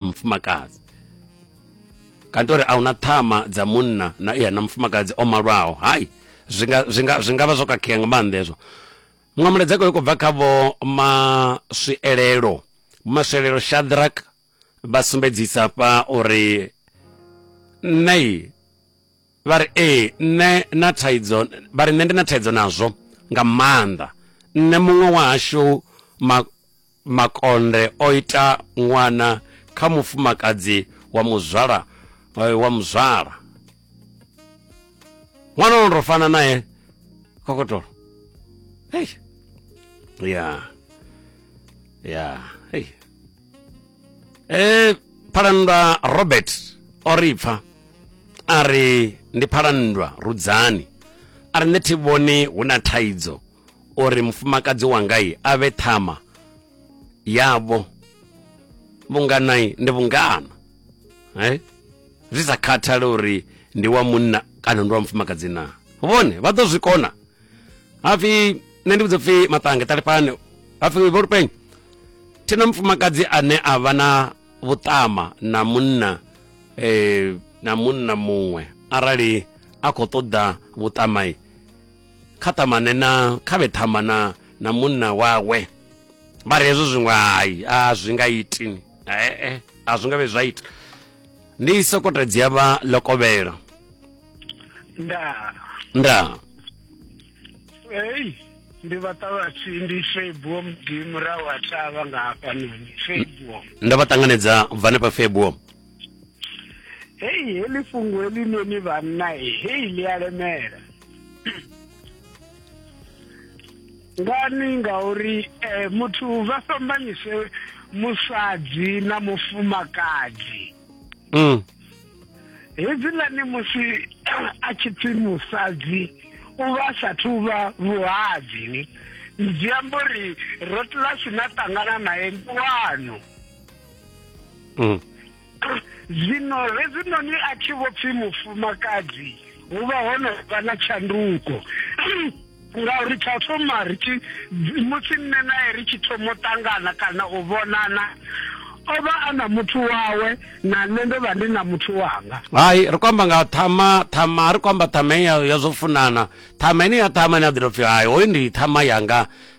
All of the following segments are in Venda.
mufumakadzi kanti uri a huna ṱhama dza munna na iya na mufumakadzi o malwaho hai zwi nga zwi nga zwi nga vha zwo khakhea nga maanḓa hezwo muṅwe mulaedza kho khou bva kha vho maswielelo maswielelo shadrak vha sumbedzisa fha uri nṋe vha ri ee nṋe na thaidzo vha ri nṋe ndi na thaidzo nazwo nga maanḓa nṋe muṅwe wa hashu ma makonde o ita ṅwana kha mufumakadzi wa muzwala eh, wa muzwala ṅwana ono to fana naye kokotolo hey. ya ya hey. e phalandwa robert o ri pfa a ri ndi phalandwa rudzani a ri nṋe thi vhoni hu na thaidzo uri mufumakadzi wanga i a vhe ṱhama yavho vhungana i ndi vhungana eh? zwi sa khathale uri ndi wa munna kana ndi wa mufumakadzi na vhone vha ḓo zwi kona hapfi nṋe ndi vhudza pfi maṱange ṱalifhane hapfi vho lupenyi thina mufumakadzi ane a vha na vhuṱama na munna eh, na munna muṅwe arali a khou ṱoḓa vhuṱamai kha ṱamane na kha vhe ṱhamba na na munna wawe vha ri hezwo zwiṅwe hai a zwi nga iti ee a zwi nga vhe zwa ita ndi sokoto dzi avha lokovhela nda nda ei ndi vha ṱavhatshi ndi febuo mudi murahu ha thavha nga hafhanoni febuo ndo vha ṱanganedza bva hanefha febuo hei heḽi fhungo heḽinoni vhanna hei ḽi a lemela ngani ngauri um muthu vha fhambanyise musadzi na mufumakadzi mm. hedzilani musi a tshi pfi musadzi u vha a sathu vha vhuhadzi ni zwi amba uri rotla si na ṱangana naye ndi wanu mm. zwino hezwinoni a thi vho pfi mufumakadzi hu vha ho no vha na tshanduko ngauri tsha thoma ri tshi musi nne naye ri tshi thoma u ṱangana kana u vhonana o vha a na muthu wawe na nṋe ndo vha ndi na muthu wanga hai ri khou amba nga ṱhama ṱhama a ri khou amba ṱhama ya zwo funana ṱhama ine ya ṱhama ine a ḓi tou pfhi hai hoyu ndi ṱhama yanga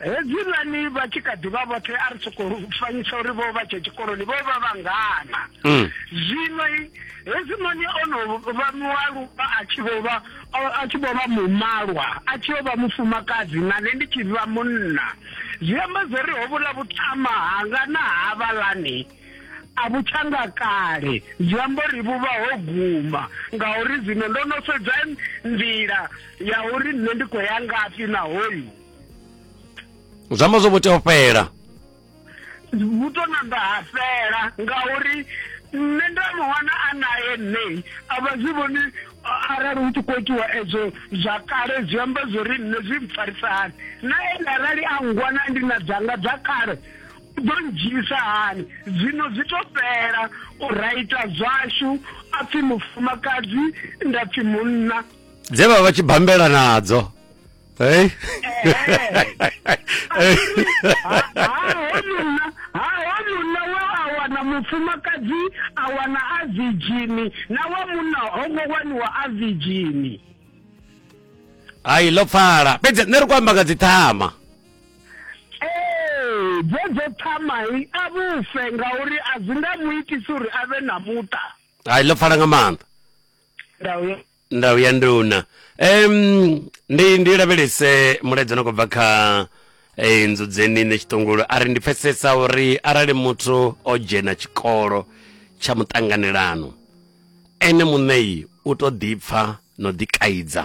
hedzilani vha tshi kha ḓivha vhoṱhe a ri sokou fanyisa uri vho vha tshe tshikoloni vho vha vhangana mm. zwino hezwinoni o no vha mualuwa a tshi vho vha a tshi vho vha mumalwa a tshi yo vha mufumakadzi na nṋe ndi tshi vha munna zwi amba zwo ri ho vhula vhuṱama hanga na havhalani a vhu tshanga kale zwi amba uri vhu vha ho guma ngauri zwino ndo no sedza nḓila ya uri nṋe ndi khou ya ngafhi na hoyu zwi amba zwo vho tea u fhela vhu to namba ha fhela ngauri nṋe nda muhona a naye nṋei a vha zwi vhoni arali hu tshi khou itiwa ezwo zwa kale zwi amba zwo ri nṋe zwi mpfarisani na ene arali a ngwana ndi na dzanga dza kale ḓo ndzhisa hani zwino zwi to fhela u raita zwashu a pfi mufumakadzi nda pfi munna dze vha vha tshi bambela nadzo hey wana mufumakadzi a wana a virgini na wa munna ho ngo waniwa a virgini hai ḽo pfala fhedzi nṋe ri khou amba nga dziṱhama ee dzedzo thamai a vhufe ngauri a zwi nga mu itisi uri a vhe na muṱa hai ḽo pfala nga maanḓa ndauya ndau ya nduna um ndi ndi lavhelese mulaedza no khou bva kha eh, nzudzeni ne tshiṱongolo a ri ndi pfesesa uri arali muthu o dzhena tshikolo tsha muṱanganelano ene muṋei u to ḓipfa no ḓikaidza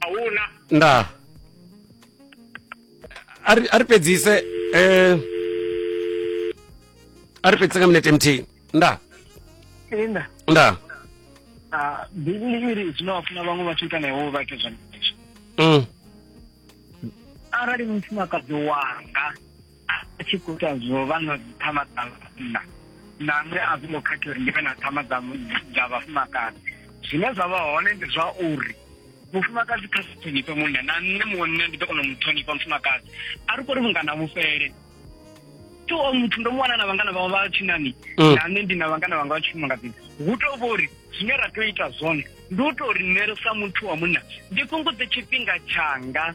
a hu na nda a ri- a ri fhedzise eh, a ri fhedzise nga minete mthihi nda enda nda ah, bivhili iri zwine wa funa vhaṅwe vhathu ita na iwe vha ite zwenezwo mm. arali mufumakadzi wanga a tshi khou ita zwo vha na dziṱhama dza vhanna na nṋe a zwingo khathi uri ndi vhe na ṱhama dza vhafumakadzi zwine zwa vha hone ndi zwa uri mufumakadzi kha si ṱhonifhe munna na nṋe munna ndi ḓo kona u mu ṱhonifha mufumakadzi a ri kori vhungana vhufhele to o muthu ndo mu wana na vhangana vhawe vha tshinani mm. na nṋe ndi na vhangana vhanga vha tshifumakadzini hu to vho uri zwine ra tea u ita zwone ndi u to ri nṋe sa muthu wa munna ndi fhungudze tshifhinga tshanga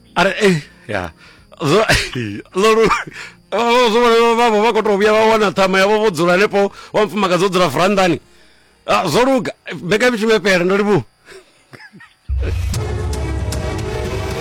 ara eh ya zwo lolu vhavho vha khou tou vhuya vha wana ṱhama yavho vho dzula hanefho wa mufumakadzi o dzula vurandani ah, zwo luga mbekamishumo ya fhela ndo livhuwa